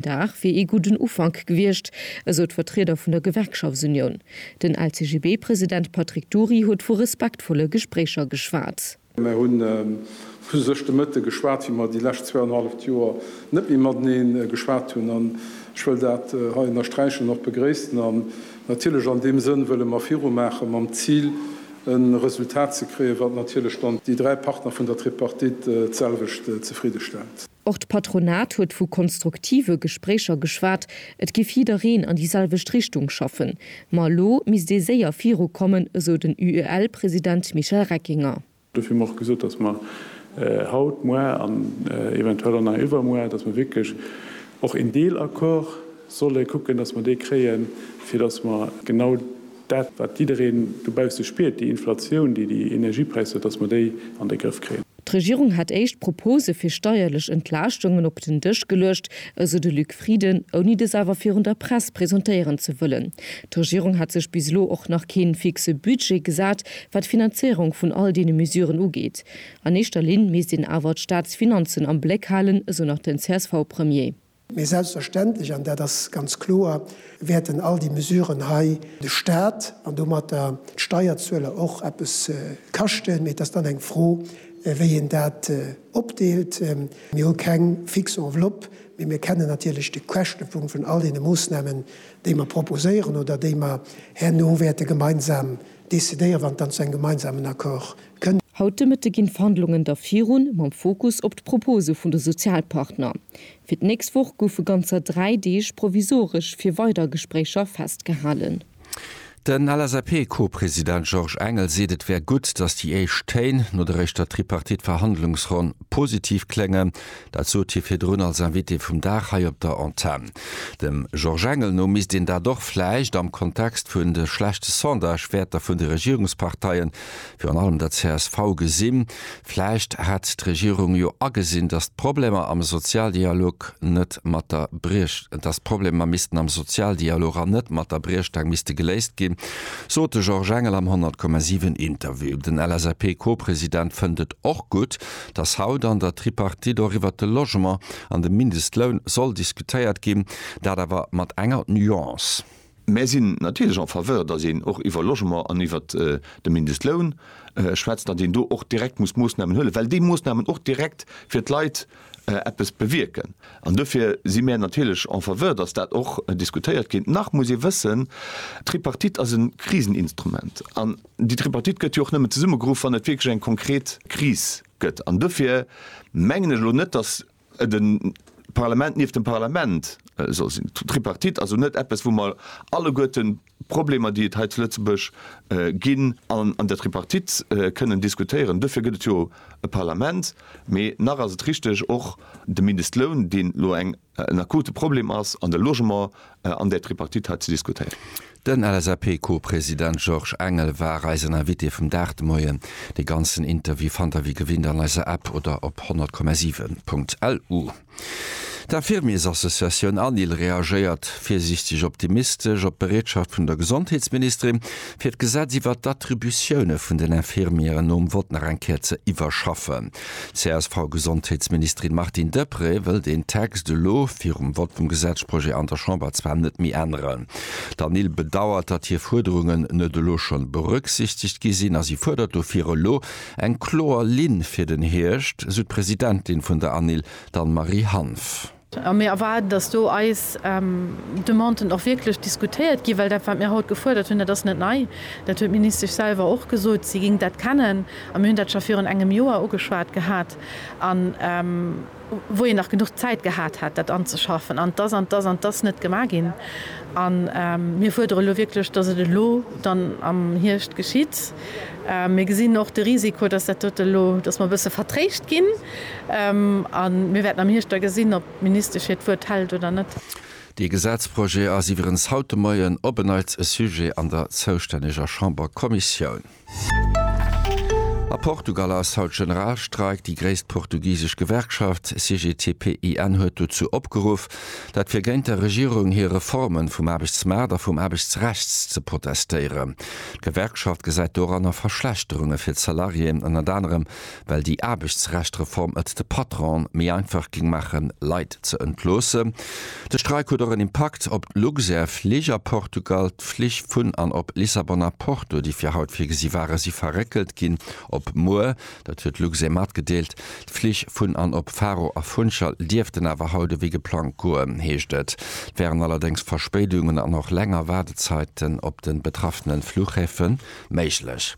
Dag wier ee gudden Ufank gewiescht, esou d'Vertrieder vun der Gewerkschaftsunioun. Den LCGB-President Patrick Dury huet vu respektvolle Gespréicher geschwat. Mir hu vu sech de Mëtte geschwat, wéi mer déi lescht zweianhalleft Joer net méi matenee geschwat hunn. An ech wëll dat hei ënnersträichen, och begréissen. An natierlech an deem Sënn wëlle mer virumaachen, mam Zil e Resultat ze kréien, wat natierlech dann déi dräi Partner vun der Tripartite d'selwecht zefridde stellt. Och d'Patronat huet vu konstruktive Gespréicher geschwat, et giff jiddereen an déi selwecht Richtung schaffen. Ma elo misst ee séier virukommen, esou den UEL-President Michel Reckinger. Dofir hu mer och gesot, datt mer haut, muer an eventuell och nach iwwermuer, datt mer wierklech och een Deelaccord solle kucken, datt mer dee kréien, fir datt mer genau dat, wat jiddereen dobausse spiert, déi Inflatioun, déi déi Energiepräisser huet, datt mer déi an de Grëff kréien. D'Regierung hätt éischt Propose fir steierlech Entlaaschtungen op den Dësch geluecht, esou de Luc Frieden, ouni dës awer virun der Press presentéieren ze wëllen. D'Regierung hätt sech bis elo och nach kee fixe Budget gesat, wat d'Finanzéierung vun all deene Mesuren ugeet. An éischter Linn misst een awer d'Staatsfinanzen am Bléck halen, esou nach den CSV-Premier. Mee selbstverständlech, an dat ass ganz kloer, wäerten all déi Mesuren hei de Stat an domatter d'Steierzueler och eppes kaschten. Mee et ass dann eng Fro, wéi een dat opdeelt. Mir hu keng fix Enveloppe, mee mir kennen natierlech de Käschtepunkt vun all deene Moossnamen, déi mer proposéieren oder déi mer herno wäerte gemeinsam decidéieren, wann et dann zu engem gemeinsamen Accord Haut de Mëtte ginn d'Verhandlungen da virun, mam Fokus op d'Propose vun de Sozialpartner. Fir d'nächst Woch goufe ganzer dräi Deeg provisoresch fir weider Gespréicher festgehalen. Den LSAP-Co-President Georges Engel seet, et wär gutt, datt déi éischt Téin no der éischter Tripartite-Verhandlungsronn positiv kléngen. Dat sot hie virdrun als Invité vum Dag hei op der Antenn. Dem Georges Engel no misst een dat och vläicht am Kontext vun de schlechte Sondage-Wäerter vun de Regierungsparteien virun allem der csv, gesinn. Vläicht hätt d'Regierung jo agesinn, dass d'Problemer am Sozialdialog net mat der, dass d'Problemer missten am Sozialdialog an net mat der Briechstaang misste geléist ginn, sot de Georges Engel am 100,7 Interview. Den LSAP-Co-President fënnt et och gutt, dass haut an der Tripartite och iwwert de Logement an de Mindestloun soll diskutéiert ginn, dat awer mat enger Nuance. Mär sinn natierlech en Faveur, datt een och iwwer Logement an iwwer de Mindestloun schwätzt, datt een do och direkt muss Moossnamen huelen, well déi Moossnamen och direkt fir d'Leit eppes bewierken. An dofir si mär natierlech en Faveur, datt dat och diskutéiert gétt. Nach muss ee wëssen, d'Tripartite ass e Kriseninstrument. An déi Tripartite gëtt jo och nëmmen zesummegeruff, wann et wierklech eng konkret Kris gëtt. An dofir mengen ech elo net, datt de Parlament nieft dem Parlament soll sinn, Tripartite, also net eppes, wou mer alleguerte Problemer, déi et hei zu Lëtzebuerg ginn, an der Tripartite kënnen diskutéieren. Duerfir gëtt et jo e Parlament. Mee nach ass et richteg, och de Mindestloun, deen elo en akute Problem ass, an de Logement, an där Tripartite hei ze diskutéieren. Den LSAP-Co-President Georges Engel war eisen Invité vum Dag de Moien. De ganzen Interview fannt der wéi gewinnt an eiser App oder op 100,7.lu. D'Infirmiersassociatioun ANIL reagéiert virsiichteg optimistesch op d'Bereetschaft vun der Gesondheetsministerin, fir d'Gesetz iwwert d'Attributioune vun den Infirmieren nom Vott nach eng Kéier ze iwwerschaffen. D'CSV-Gesondheetsministerin Martine Deprez wëll deen Text elo virum Vott vum Gesetzprojet an der Chamber zwar net méi änneren. D'Anil bedauert, datt hir Fuerderungen net elo schonn berücksichtegt gi sinn a si fuerdert dofir elo eng kloer Linn fir den Hierscht, sou d'Presidentin vun der Anil, d'Anne-Marie Hanff. A mir erwaarden, dass do eis Demanden och wierklech diskutéiert ginn, well dat, wat mir haut gefuerdert hunn, dat ass net nei. Dat huet d'Ministesch selwer och gesot, si géing dat kennen. A mir hunn dat scho virun engem Joer ugeschwat gehat, wou een nach genuch Zäit gehat hätt, dat anzeschaffen. An et ass an et ass an et ass net gemaach ginn. A mir fuerdere lo wierklech, dass et elo dann am Hierscht geschitt. Mir gesinn och de Risiko, dass dat dote elo, dass mer e bësse vertréischt ginn. A mir wäerten am Hierscht da gesinn, ob d'Ministesch hiert Wuert hält oder net. Dee Gesetzprojet ass iwwerens haut de Moien op en Neits e Sujet an der zoustänneger Chamberkommissioun. A Portugal ass haut Generalstreik. Déi gréisst portugisesch Gewerkschaft CGTP-IN huet dozou opgeruff, dat fir géint der Regierung hir Reforme vum Aarbechtsmaart a vum Aarbechtsrechts ze protestéieren. D'Gewerkschaft gesäit doranner Verschlechterunge fir d'Salariéen, ënnert anerem well déi Aarbechtsrecht-Reform et de Patronen méi einfach géing maachen, Leit ze entloossen. De Streik huet och en Impakt op d'Luxair Flich a Portugal. D'Flich vun an op Lissabon a Porto, déi fir haut virgesi waren, si verréckelt ginn op muer. Dat huet Luxair matgedeelt. D'Flich vun an op Faro a Funchal dierften awer haut ewéi geplangt goen, heescht et. Et wären allerdéngs Verspéidungen an och länger Waardezaiten op de betraffene Fluchhäfe méiglech.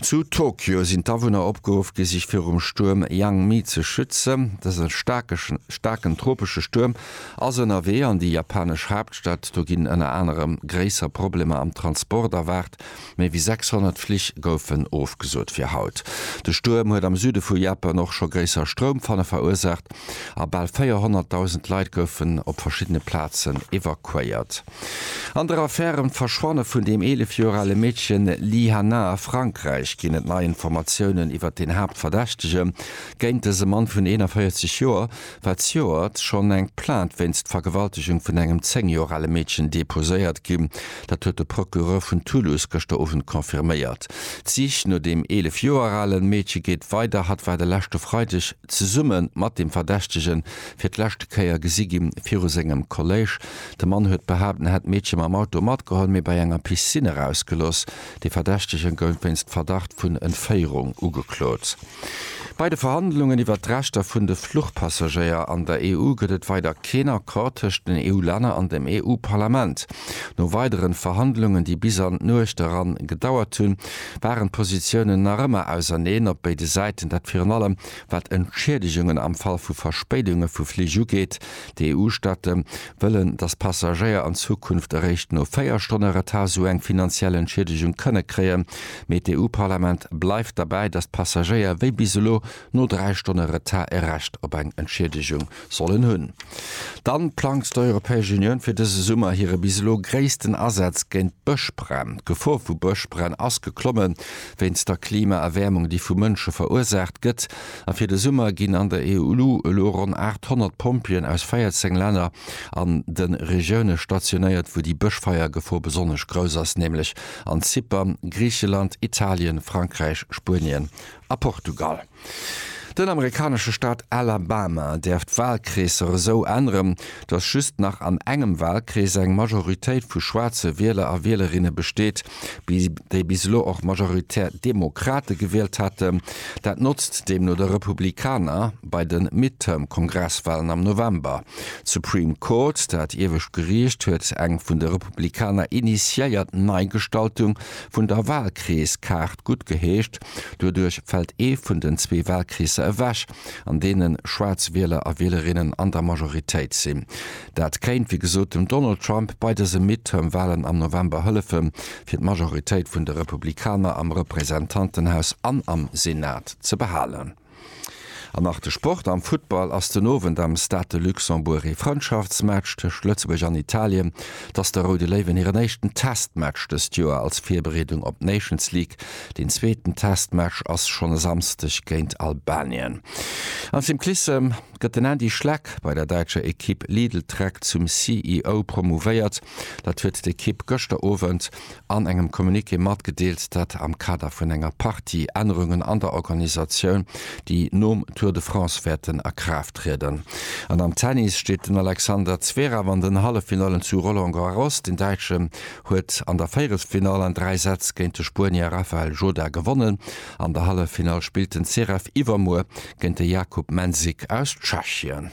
Zu Tokio sinn d'Awunner opgeruff gi sech virum Stuerm Yangmi ze schützen. Dëse staarken tropesche Stuerm ass ënnerwee an déi japanesch Haaptstad. Do ginn ënner anerem gréisser Problemer am Transport erwaart. Méi wéi 600 Flich goufen ofgesot fir haut. De Stuerm huet am Süde vu Japan och scho gréisser Stroumfanne verursaacht a bal 400.000 Leit goufen op verschiddene Plazen evakuéiert. An der Affär ëm d'Verschwanne vun dem 11 Joer ale Meedchen Li Hanna a Frankräich ginn et nei Informatiounen iwwert den Haaptverdächtege géint dëse Mann vun 41 Joer, Wat Joer ass schonn eng Plainte wéinst Vergewaltegung vun engem 10 Joer ale Meedchen deposéiert ginn. Dat huet de Procureur vun Toulouse gëschter Owend confirméiert. D'Sich no dem 11 Joer ale Meedche geet weider. Hatt war de leschte Freideg zesumme mat dem Verdächtege fir d'lescht Kéier gesi gi viru sengem Kolléisch. De Mann huet behaapt, en hätt d'Meedche mam Auto matgeholl, mee bei enger Piscine erausgelooss. De Verdächtege gouf wéinst Verdacht vun Entféierung ugeklot. Bei de Verhandlungen iwwert d'Rechter vun de Fluchpassagéier an der EU gëtt et weider keen Accord tëscht den EU-Länner an dem EU-Parlament. No weideren Verhandlungen, déi bis an d'Nuecht eran gedauert hunn, waren d'Positiounen nach ëmmer auserneen op béide Säiten, dat virun allem wat Entschiedegungen am Fall vu Verspéidunge vu Flich ugeet. D'EU-Staate wëllen, datt d'Passagéier an Zukunft eréischt no 4 Stonne Retard sou eng finanziell Entschiedegung kënne kréien. Mee d'EU-Parlament bleift derbäi, datt d'Passagéier wéi bis elo no 3 Stonne Retard e Recht op eng Entschiedegung sollen hunn. Dann plangt d'Europäesch Unioun fir dëse Summer hire bis elo gréissten Asaz géint d'Bëschbränn. D'Gefor vu Bëschbränn ass geklommen. Wéinst der Klimaerwäermung, déi vu Mënsche verursaacht gëtt, A fir de Summer ginn an der EU elo ronn 800 Pompjeeën aus 14 Länner an de Regioune stationéiert, wou déi Bëschfeiergefor besonnesch grouss ass, nämlech an Zypern, Griicheland, Italien, Frankräich, Spuenien a Portugal. Den amerikanesche Staat Alabama däerf d'Walkreesser esou änneren, datt just nach an engem Walkrees eng Majoritéit vu schwaarze Wieler a Wielerinne besteet, déi bis elo och majoritär Demokrate gewielt haten, dat notzt deemno de Republikaner bei de Midterm-Kongresswalen am November. D'Supreme Court, dat iewescht Geriicht, huet eng vun de Republikaner initiéiert Neigestaltung vun der Walkreeskaart guttgeheescht. Doduerch fält ee vun den zwee Walkreesser ewech, an deene schwaarz Wieler a Wielerinnen an der Majoritéit sinn. Dat kéint, wéi gesot, dem Donald Trump bei dëse Midterm-Walen am November hëllefen, fir d'Majoritéit vun de Republikaner am Representantenhaus an am Senat ze behalen. An nach de Sport, Am Futtball ass den Owend am Stade de Luxembourg ee Frëndschaftsmatch tëscht Lëtzebuerg an Italien. Et ass de Roude Léiwen hiren éischten Testmatch dëst Joer als Virbereedung op d'Nations League. Deen zweeten Testmatch ass schonn e Samsdeg géint Albanien. An Cyclissem. gëtt den Andy Schleck bei der däitscher Ekipp Lidl Trek zum CEO promouvéiert. Dat huet d'Ekipp gëschter Owend an engem Communiqué matgedeelt, dat am Kader vun enger Partie Ännerungen an der Organisatioun, déi nom Tour de France wäerten a Kraaft trieden. An am Tennis steet den Alexander Zverev an den Halleffinallen zu Roland Garros. Den Däitschen huet an der Véierelsfinall an dräi Sätz géint de Spuenier Rafael Jodá gewonnen. An der Halleffinall spillt den Zverev iwwermuer géint de Jakub Mensik aus Tschechien.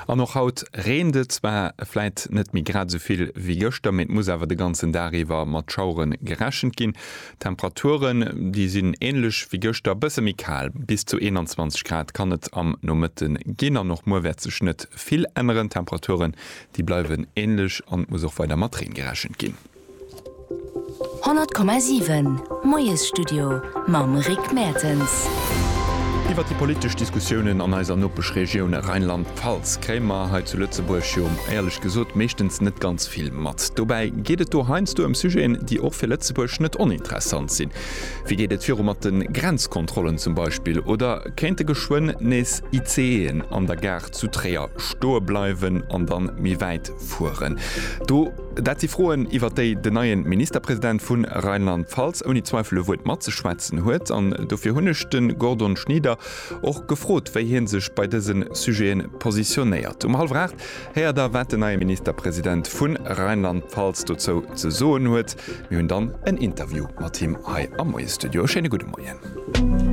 An och haut reent et zwar, vläit net méi grad esou vill wéi gëschter, mee et muss awer de ganzen Dag iwwer mat Schauere gerechent ginn. D'Temperaturen, déi sinn änlech wéi gëschter, e bësse méi kal, bis zu 21 Grad kann et am Nomëtte ginn. An och muer wäert sech net vill änneren, d'Temperaturen, déi bleiwen änlech an et muss och weider mat Reen gerechent ginn. 100,7 Moiesstudio mam Rick Mertens. Iwwer déi politesch Diskussiounen an eiser Nopeschregioun Rheinland-Pfalz kréie mer hei zu Lëtzebuerg jo éierlech gesot meeschtens net ganz vill mat. Dobäi geet et do heiansdo ëm Sujeten, déi och fir Lëtzebuerg net oninteressant sinn. Wéi geet et viru mat de Grenzkontrollen zum Beispill? Oder kéinte geschwënn nees ICEen an der Gare zu Tréier stoe bleiwen an dann méi wäit fueren? Do. Dat si Froen, iwwer déi den neien Ministerpresident vun Rheinland-Pfalz ouni Zweifel e Wuert matzeschwätzen huet. An dofir hunn ech den Gordon Schnieder och gefrot, wéi hien sech bei dësen Sujeten positionéiert. Um hallwer 8 héiert der, wat den neien Ministerpresident vun Rheinland-Pfalz dozou ze soen huet. Mir hunn dann en Interview mat him hei am Moiesstudio. E schéine gudde Moien.